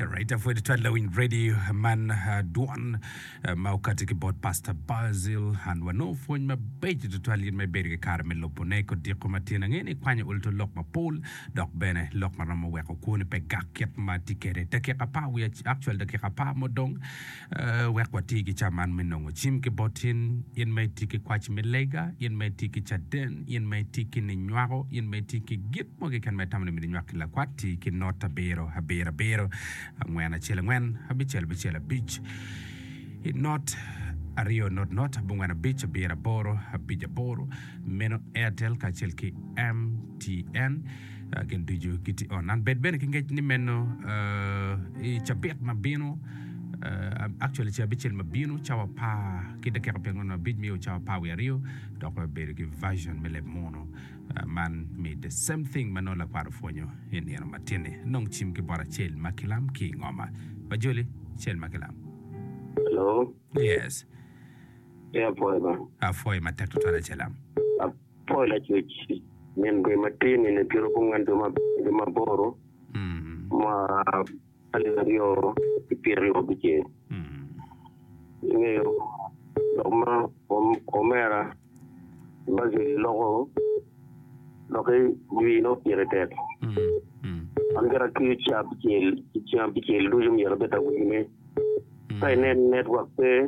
Alright, afwed twal lawiny ready man ah, dwon ah, ma okati ki bot Pastor Basil an wanongo pwony mabeco tutwal in ma ibedo ki kare me lobone kod diko ma tyen ange ni kwanyo ol to lok mapol dok bene lok ma romo weko kwoni pe gak kit ma tye kede dakika apar wi ac- actual dakika apar mo dong Wek wati ki ca man me nongo cim ki bot in, in ma itye ki kwac me lega, in ma itye ki caden, in ma itye ki ninywako, in ma itye ki gin mo keken ma itamo ni myero inywak ki lakwat, ti ki not abiro, abiro, abiro, angwen, acel, angwen, abicel, abicel, abic, not, aryo, not, not, abongwen, abic, abiro, aboro, abic, aboro. Meno Airtel kacel ki MTN. ah, gin ducu gitye on. An bed bene ki ngec ni meno ah, i cabit ma bino ah, ah, actually ca abicel ma bino cawa apar ki dakika pier angwen abic miyo cawa apar wiye aryo dok wabedo ki version me leb munu ah, man me the same thing ma nongo lakwat opwonyo i nino matinni nong cim ki bot acel ma kilam ki i ngoma ba joli acel ma kilam Hello, yes e apwoyo ba. apwoyo matek tutwal acelam Ap- Pol acuc min gwe matir nino piro gungwen dwe ma abiro dwe ma aboro ma alip aryo ki pyera aryo abicel. Ingeyo lok ma omera Basil loko lokke jwi nongo pire tek. An kara atweyo caa abicel ki ceng abicel ducu myero abed awinyo ne. Ka inen network pe.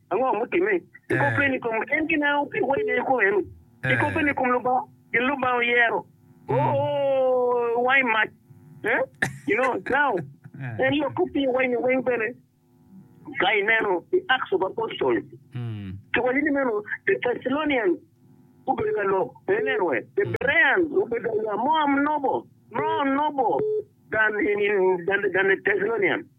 Ango mutimme? Ikobbe ni kom en gineno pi wene kong en oye? Ikobbe ni kom Lubanga, gin Lubanga oyero? Oo, iwango i mac. Eh? You know, now, en lok kop pi wene weng bene. Ka ineno i Acts of Apostle, kiwaco ni meno the Thessalonian gubedo ka lok, pe ineno we? The Bereans gubedo aya mo am nobo, no nobo, than, than, than the Thessalonian.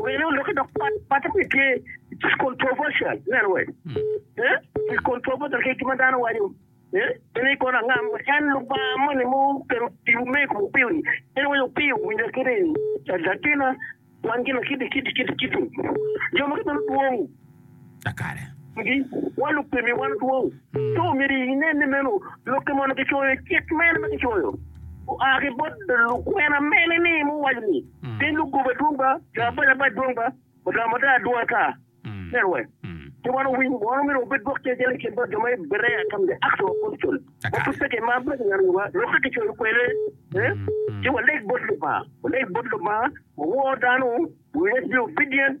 Wele oloki dok pat patte pe tye just controversial ineno wee eh is controversial ki kima dano waco eh en i kono angam en Lubanga moni mo kero tibu me ko opio ni en waco opio winja kene latina kwan gina kiti kiti kiti kiti jo ma kibino dwong Ngi, wan lupemi wan dwong. Ci omyero inen ni meno lokke mono kicoyo cik mene ma kicoyo oa ki bot lukwena mene ni muwaco ni piny lugoba dwong ba, jo abac abac dwong ba, mudaa mudaa dwong ata. Nen we ci wan owiny mono myero wabed lwak ci acel i kin bot jo ma i Berea from the Acts of Apostle ma pud pe kimaro bene kineno nyo wa lokke kicoyo kwede ci waleg bot Lubanga, waleg bot Lubanga, wawor dano, we let's be obedient.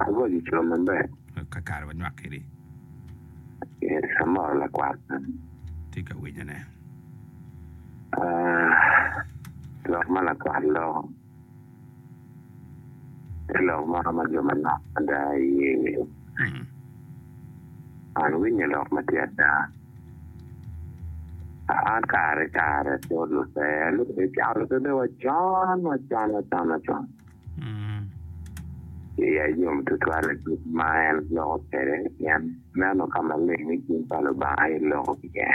Ago jo co maber. Kakare wanywak kedi. Yes, amor lakwat. Tye ka winyo ne. Uh, lok ma lakwat loko. Te lok moro ma jo manok ada iye winyo. Hmm. An winyo lok ma tye ada. An kare kare, pol lutero, lutero, lutero, wacon, wacon, wacon, wacon. Iya yom tutwal adwogi ma en loko kwede, pien neno ka maleng ni cing pa Lubanga aye loko iye.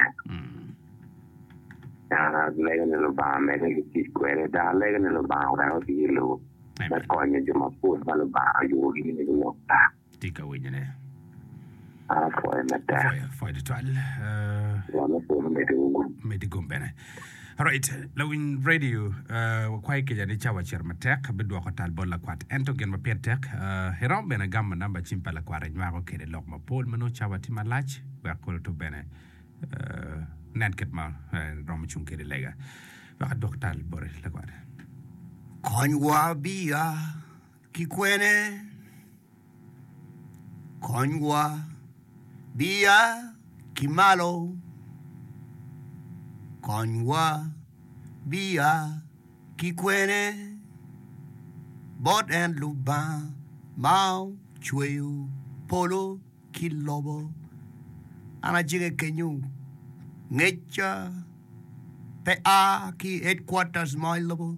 En alego ni Lubanga medde ki tic kwede, dok alego ni Lubanga wek otiye lobo me konyo jo mapol ma Lubanga oyubogi ni gulok tar. Tye ka winyone. Apwoyo mada. Apwoyo, apwoyo tutwal. Uh, Wa me polo medo uru. medi gum bene. Alright, lawiny radio, uh, wakwayi kica ni cawa cito matek, abidwoko tal bot lakwat. Ento gin ma pire tek, uh, iromo bene gamo namba cim pa lakwat inywako kede lok mapol ma nongo cawa tye malac, wek kolo oto bene, uh, nen kit ma uh, romo cung kede lega. Wek adwok tal boti lakwat. Konywa biya Ki kwene? Konywa. Biya ki malo. Konywa. Biya ki kwene? Bot en Lubanga ma ocweyo polo. ki lobo. An ajege kenyu, ngecca pe a ki i headquarters mo i lobo,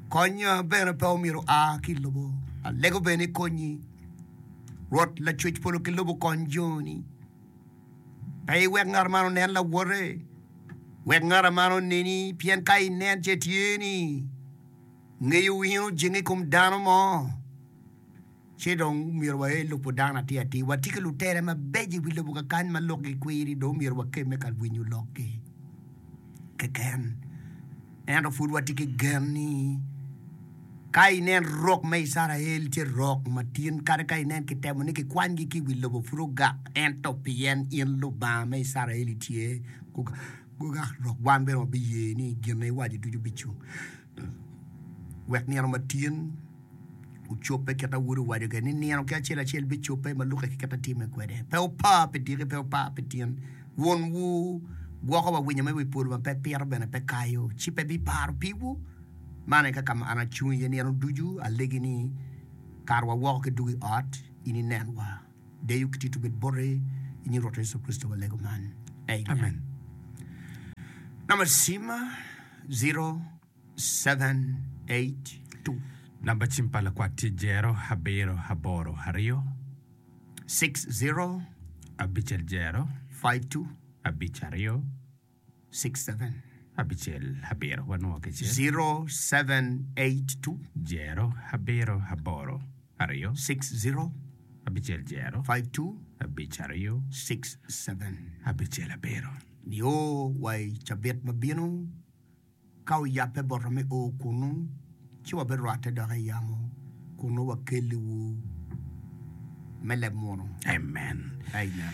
konnya bene pe omyero oa ki i lobo. Alego bene ni konyi, Rwot Lacwec polo ki lobo okony joni, pe iwek ngat man onen lawote, wek ngat man oneni, pien ka inen ce tye ni ngeyo in ojenge i kom dano mo, Ci dong myero wael lubo dano atir atir, wati ki lutere mabeco i wi lobo kakany ma lukgi kwiri, dong myero wakemme ka winyo lokgi keken. Ento pud wati ki gen ni ka inen rok me Icrael tye rok matin, kadi ka inen kitemo ni kikwanygi ki i wi lobo, pud ogak. Ento pien in Lubanga me Icrael itye, gugak rok, wan bene wabiye ni gin ma iwaco ducu bicung. wek nino ma tyen ocobbe kit ma Wode owaco kwede ni nino ki acel acel bicobbe ma lukke ki kit atime kwede. Pe wupa pi tiki, pe wupa pi tyen. Wonwu gwoko wa winyo me wi polo ma pe piro bene pe kayo, ci pe biparo piwu. Man aye kaka an acung iye nino ducu, alegi ni, Kara wa woko ki duk i ot, in inenwa. Deyo ki tito obed bote i nying Rwotwa Yecu Kricito walego man, Amen. Namba cima 0782. Namba cim pa lakwat tye jero abiro aboro aryo. 60. Abicel jero. 52. Abic aryo. Nio wa i cabit ma bino, ka oyabbe bota me o kunnu, ci wabirwatte dok i yamo kunnu wakelliwu me leb muno. Amen. Amen.